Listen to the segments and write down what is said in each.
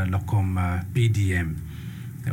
lokom PDM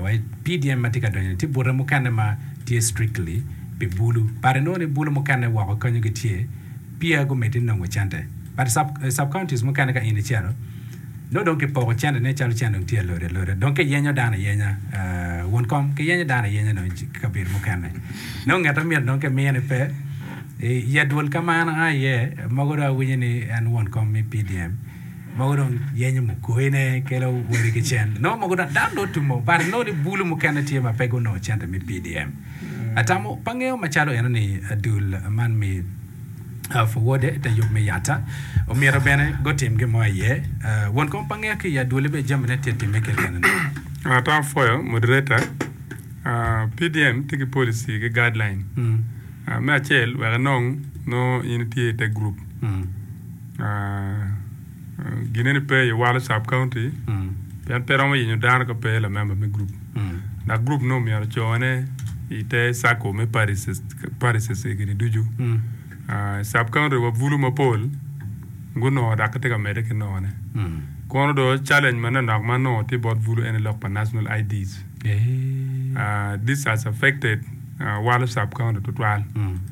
wa PDM matye ka donyo ni tye bute mukene ma tye strictly pi bulu but inongo ni bulu mukene woko kenyo gitye peya gumiti nongo cente but sub counties mukene ka in icito nongo dong kipoko cente ne calo cente dong tye alode alode dong kiyenyo dano ayenya wun kom kiyenyo dano ayenya dong kabedo mukene nongo nget amyero dong kimiyo ni pe ya dwol kama an aye mogo dong awinyo ni en won kom me PDM Mogo dong yenyo mugoine kelo wori ki cen. Nongo mogo dong dano nongo tumo but inongo ni bulu mukene tye ma pe gunongo cente me PDM. Atamo pa ngeyo macalo eno ni dul man mi Fuwode te yub me Yatta omyero bene gutim gin mo aye. Won kom pa ngeyo ki i adwole be jami ne tye timme keken eno. Atamo pwoyo moderator. PDM tye ki policy ki guideline. Me acel wek inong nongo in itye ite group. Gine ni pe aye walo sub county pien pe romo yenyo dano ka pe lamemba me group dok group no myero ocone i te circle me parishes egini ducu sub county wa bulu mapol gunongo dok gitye ka mede ki nongo ne kono do challenge ma nanok ma nongo tye bot bulu ene lok pa national IDs this has affected walo sub county tutwal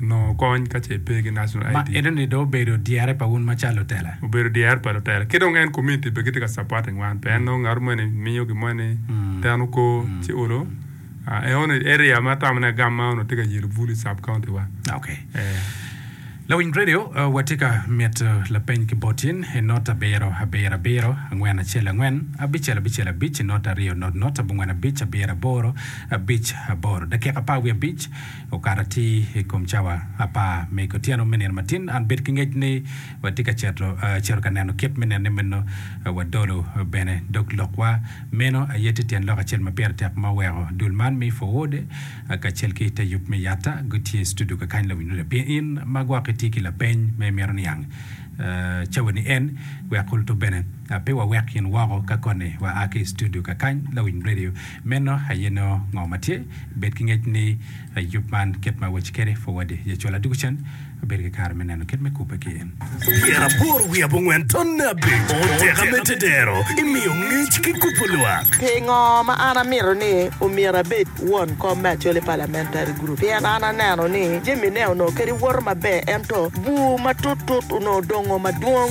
nongo kony ka ce ipe ki National ID. Ma enoni dong obedo dyere pa un macalo lutela. Obedo dyere pa lutela. Ki dong en community bene gitye ka supporting wan pien nongo ngat moni miyo gin moni teno ko ci olo. Enoni area ma atamone agam ma onongo tye ka yelo Bulu sub county wa. Okay. Lawiny Radio, watye ka mito lapeny ki bot in i not abiro abiro abiro, angwen acel angwen, abicel abicel abic, not aryo not not, abongwen abic, abiro aboro, abic aboro. Dakika apar wiye abic. okato atir i kom cawa apar me kotyeno me nino matin. An bed ki ngec ni watye ka cito cito ka neno kit me nenne meno. Wadolo bene dog lokwa. Meno aye tye tyen lok acel ma pire tek ma oweko dul man me Forward kacel ki te yub me Yatta gutye i studio kakany lawiny loda. Pien in ma gwok itye ki lapeny ma imito niang cawa ni en, wek kulu to bene pe wawek in woko ka koni waa ki i studio kakany lawiny radio. Meno aye nongo ngo ma tye. Bed ki ngec ni yub man kit ma awaci kwede pud wadi. Ye cola doko cen, abedo ki kare me neno kit me kubbe ki in. Pyeraboro wiye abongwen tonne abic oteka me tedero i miyo ngec ki kubo lwak. Pingo ma an amito ni omyero abed won kom me Acholi Parliamentary Group? Pien an aneno ni jamine onongo kadi woto maber ento bur matut tut onongo dongo madwong.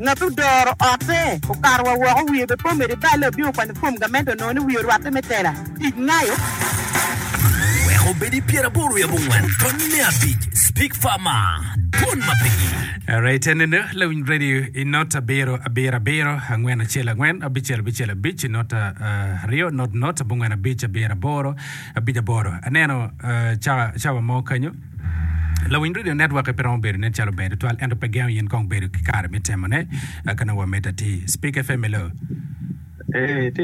Ngat odoro otte okato wa woko, wiye be pe omedo i balle, obino kwanyo fom gamente onongo ni wiye orwatte me tela. Tic ngayo. Wek obed i pyeraboro i abongwen tony me abic, Speak Farmer, Dwon ma pigi. Rate ne ne lawiny radio i not abiro abiro abiro angwen acel angwen abicel abicel abic i not aryo not not abongwen abic abiro aboro abic aboro aneno cawa mo kanyo. Lawiny redio netwokke pe romo bedo nen calo ber tutwal ento pe gengo in kong bedo ki kare me temone ka nongo wamedde atir. Speak FM, hello. Ee,